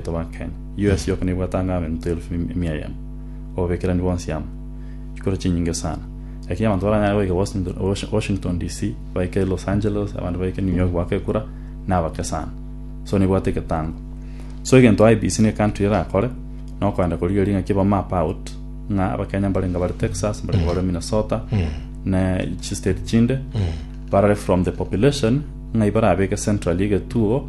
Toba Kenya. US yoka nebwate ang'e abento elfu emia eyemo, obobekerani bwonsi amo, chikura chinyinge sana. Lakini abanto baranyare goika Washington, Washington DC, baike Los Angeles, abande baike New York goaka ekura, nabake sana. So nebwate egetango. So egento IEBC ne country erakore, nokoenda korigereria ng'aki eba map out, ng'a abakenya mbarenge bare Texas, mbarenge bare Minnesota, ne chistate chinde, barore from the population, ng'ai barabeke centrally egetuo,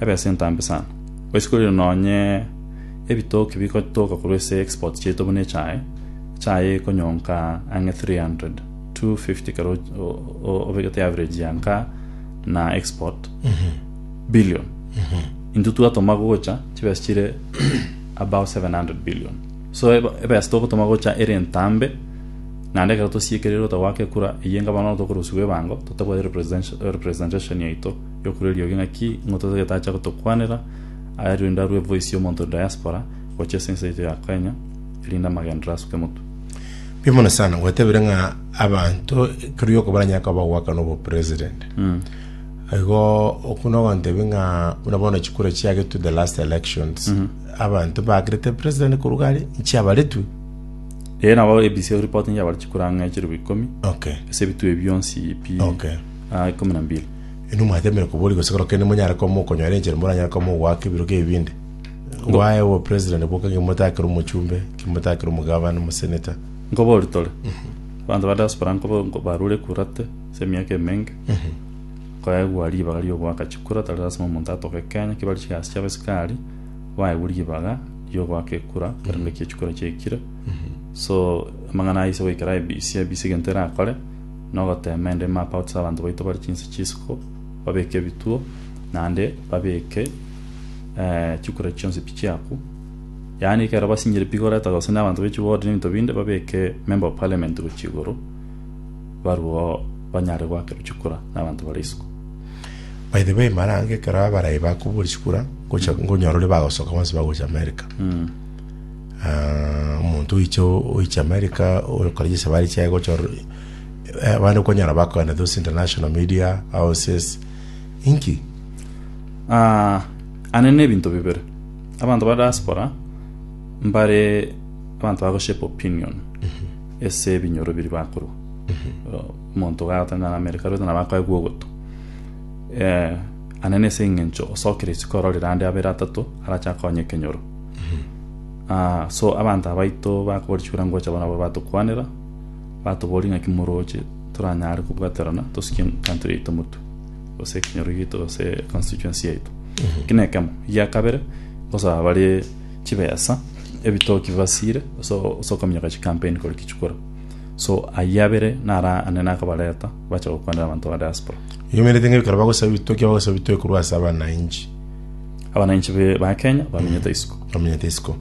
ebesa entambe sana. Gochia korire nonye ebitoki bigotoka korwa ase exports chiaito buna echae, echae ekonyonka ang'e 300, 250 ekero obegete average ya nka na export billion. Intwe twatoma gocha chibesa chire above 700 billion. So ebesa togotoma gocha ere entambe naende ekero tosiekereire gotagwaka ekura, eyio enga bono tokorosiwa ebango totabwate representation yaito. Yokorwa eriogi ng'aki ng'o totagete acha gotokwanera ayarire inde arue voice y'omonto diaspora gochia ase ense yaito ya Kenya erinde amagenderero asuke motwe. Mbuya mono sana gwatebire ng'a abanto ekero gioko baranyare koba bagoakana obo president igo okwo nogontebia ng'a buna bono chikura chiagetwe the last elections abanto bakerete president korwa gare nchiabaretwe Ee nabo ABC eripoti nchiabare chikura ang'e chirobio ikomi okay ase ebitwe ebio bionsi pi Okay. ah, ikomi na mbili Inwe mwateemire koboria gose korokera nimonyare koba mokonyora enchera moranyare koba mogoaka ebirogo ebi binde. Ngwae obopresident boka ng'a imotaakera omochumbe, ng'a imotaakera omogavana, omosenator. Nkoboria tore, abanto ba diaspora nkoba nko- barure ekurate ase emiaka emenge, nkoegwa ribaga riogoaka chikura tari lasima omonto atoke Kenya, kebare chigasi chiabo chikari, baegwe ribaga riogoaka ekura ekero naki echikura chiaikire. So, amang'ana aya ase goikera IEBC, IEBC egento erakore, nogoteema ende mapouts abanto baito bare chinse chisiko, babeke ebituo, naende babeke chikure chionsi pi chiaku. Yaani ekero basinyire pi goreta gose na abanto be chiward na ebinto binde babeke member of parliament gochia igoro barwo banyare goakerwa chikura na abanto bare isiko. By the way, mara ange ekero abarayi bakoboria chikura, ngocha- ngonyora ore bagosoka bonsi bagocha America. Ah, omonto oiche oiche america okora chisabari chiaye gochor eh, abande konyara bakoana those international media houses inki Ah, ane ne ebinto bibere abanto ba diaspora mbare abanto bagoshape opinion ase ebinyoro biri bakorwa omonto gagotangana na america rwete nabo akoegwa ogoto eh, ane nese eng'encho osokire isiko ororire ande abere atato arache akonye ekenyoro Ah, so abanto abaito bakorichora ngocha bono nabo batokwanera, batoboria ng'aki moroche toranyare kobwaterana tosikie country yaito motwe, gose ekenyoro giaito gose constituency yaito. Eki na ekemo. Egia kabere, ngosaba bare chibesa, ebitoki bibasire, ase ase okominyoka chicampaign kore ki chikora. So ayio abere naro ane nakobareta, bache gokwanera abanto ba diaspora. Oyomerete ng'a ekero bagosaba ebitoki, bagosaba ebitoki korwa ase abananchi. Abananchi be- ba Kenya bamenyete isiko. bamenyete isiko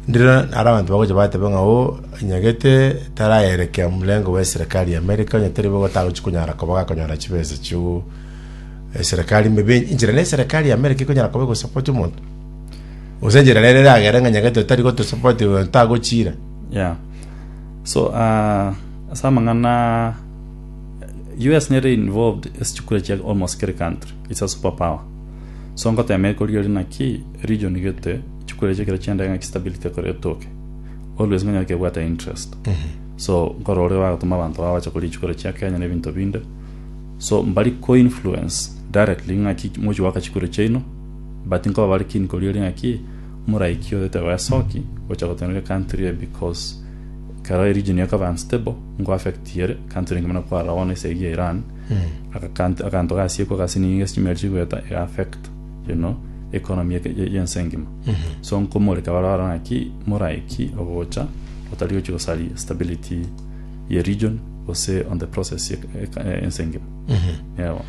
ndire ara abanto bagocha batebe ng'a o nyagete tarayerekea mrengo bwa eserekari ya amerika onye tere bogo tagochi konyara koba gakonyora chibesa chiu eserekari mebe inchera na eserekari ya amerika ekonyara koba egosapoti omonto gose enchera nere eragere ng'a nyagete otari gotosapoti oyo tagochira Yeah. So, ah, ase amang'ana US nere involved esechukure chia almost kere country. Is a super power so ngotema ekorigoria naki region gete chikorecha ekero chiendae ngaki stability ekore etoke always ngonye gaki ebwate interest so nkore oria bagotoma abanto babo bache koria chikoro chia Kenya na ebinto binde so mbari ko influence directly ngaki mochi goaka chikoro chiaino but nkoba bare keen korigoria naki moraiki oyo teba esoki gocha gotenena country eye because kero region ekoba unstable nko affect ere country engima na kwarora bono ase eyio ya Iran Agakanto akanto gasiekwa gase nigo egasi chimeri chigoeta ega affect you know economy eke ye- yense engima so nkomoreka bare bare naki moraiki ogocha otari gochi gosaria stability ye region gose on the process ye eka- eh, ense engima yeah bono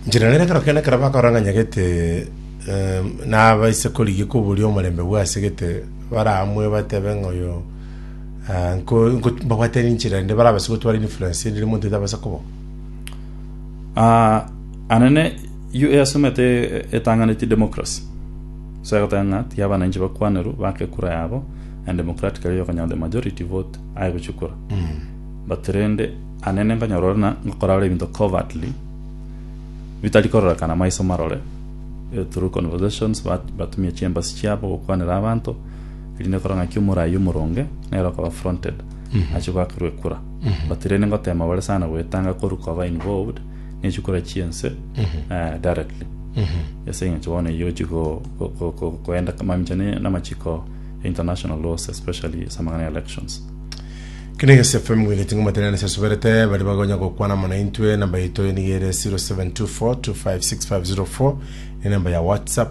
Njira nere ekero kende ekero bakorang'anya gete em, nabaise korigia koboria omorembe bwase gete baramwe batebe ng'a oyo Ah, nko- nko- mbabwate ninchera ende barabase gotwara influence ndire monto etabasa kobo Ah, anene yu eyasomete e- etang'aneti democracy so egoteba ng'a tiga abananchi bakwanerwe bake kura yabo and democratically okonyaa the majority vote aye gochia kura but rende anene nkonyora ore na ngokora ore ebinto covertly bitari kororekana maiso marore eh, through conversations bat- batumia chiembasi chiabo gokwanera abanto erinde ekore ng'aki omorai omoronge nere okoba fronted achie goakerwa ekura but rende ngotema bare sana goetanga koru koba involved nechikura chi'ense eh, directly ase eng'encho bono eyio ochi go- go- go- go- goenda mamincha ne- namachiko ya international laws especially ase amang'ana ya elections Kene gese FM ngwine tingo matenene sesuberete bari bagonya gokwana mona intwe namba yaito niga ere 0724256504 ne namba ya WhatsApp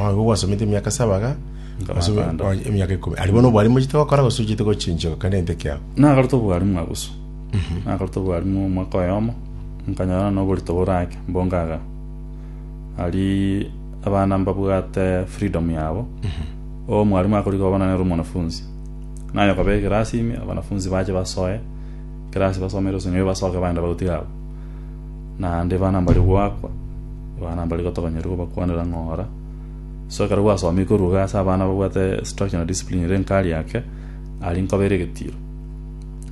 Onye gwasomete emiaka saba iga, Ase bo- Nkabakanda. onye- emiaka ikomi aria bono obwarimu ochete gokora gose ochete gochinchigwa kare nente ekiago nagarete obwarimu abusu nagarete obwarimu omwaka oyomo nkanyora na oborito bore ake mbongaga aria abana mbabwate freedom yabo omwarimu akorigia oba nere omwanafunzi naye okaba ekerasi ime abanafunzi bache basoe kerasi basomere gose nyowe basoke bagenda bagotiga abwo naende ebana mbari goakwa, ebana mbari gotogonyeria gobakwanera ng'ora. So ekero gwasomire koruga ase abana babwate structure na discipline ere nkari ake, aria nkoba ere egetiro.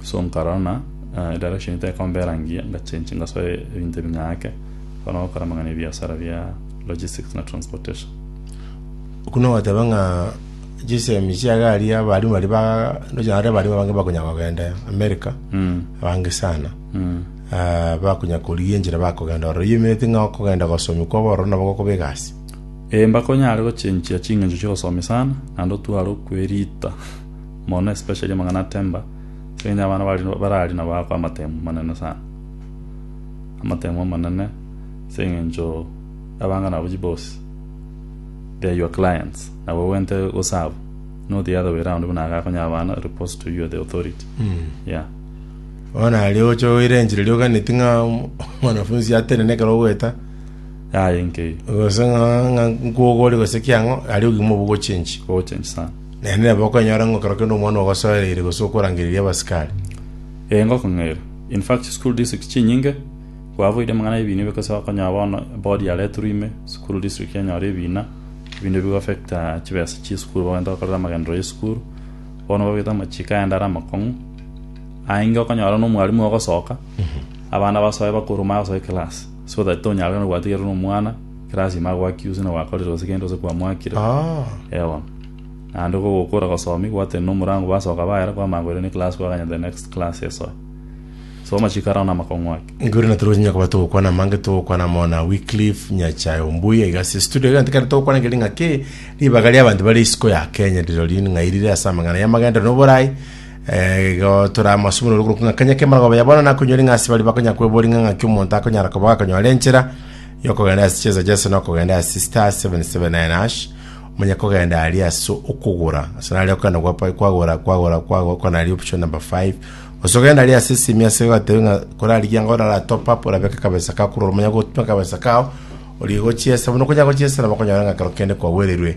So nkarora ng'a eh, direction tekombera ngiya, ngachenchi ngasoa ebinto ebi ng'ake, bono gokora amang'ana ebiasara bia logistics na transportation. Buna ogoteba ng'a chisemi chia gari abarimu baria ba ndoche naende abarimu abange bakonyara kogenda America, abange sana. bakonya korigia enchera bakogenda ororo. Oyoimereti ng'a okogenda gosomia kwabo ororo nabo gokobeka ase. Ee, mbakonyare gochenchia chingencho chi'obosoomi sana, naende otware okwerita mono especially amang'ana a temper, ase eng'encho abana bari barari nabo ago amatemu amanene sana. Amatemu amanene ase eng'encho abang'a nabo chiboss, they are your clients, nabo ogwente go serve, not the other way round buna agakonyera abana reports to you are the authority, yeah. Bono aria ogocha goira enchera eria oganeti ng'a omwanafunsi atenene ekero ogoeta, Yaya enkeyo. gose ng'a ng'a nkwogori gose ki ang'o, aria ogima obo ogochia enchi. Ogocha enchi sana. Naende nabo okonyora ng'a ekero kende omwana ogosoereire gose okorangereria abasikari. Ee, ngokong'eira. In fact, chisukuru district chinyinge, kwaboire amang'ana ya ebiina gose okonyora bono board yaretirwe ime, sukuru district yanyora ebiina, ebinto ebi bigoaffecta chibesa chia esukuru, bagenta gokorera amagenderero ya esukuru, bono babwate amachiko aende are amakong'u, Aenge okonyora nomwarimu ogosoka, abana basoe bakoruma ase ekelasi, so that tonyare na gwatigera nomwana ekelasi ime ago accuse na gwakorire gose gento gose kwamwakire. Ah. Ewa. Naende ko gokora gosomi gwateni no murango basoka baera kwamanya koira ne class kwaganya the next class esoe. So amachiko arao na amakong'u ake. Igoro na toro nyakoba togokwana amange togokwana mona Wycliffe Nyachae Ombuya iga ase studio egento kende togokwana keri ng'aki ribaga ria abanto bare isiko ya Kenya riro riri ng'ai rire ase amang'ana ya magendo na oborai Igo toramosubunore okorwa ng'a kanya k'emerogaba ya bono nakonyori ng'a ase baria bakonya kwebori ng'a ng'aki omonto akonyara koba gakonyora enchera yokogenda ase chinsa chiase nokogenda ase star 779 hash omonye kogenda ari ase okogora ase nari okogenda gwapa- kwagora kwagora kwagora okona ari option number 5 gose ogenda ari ase esimi ase ogatebe ng'a korarigia ng'a orara top up orabeke akabesa kako korora omonya gotuma akabesa kao origochiesa buna okonya gochiesa nabo okonyora ng'a ekero kende kwagwererwe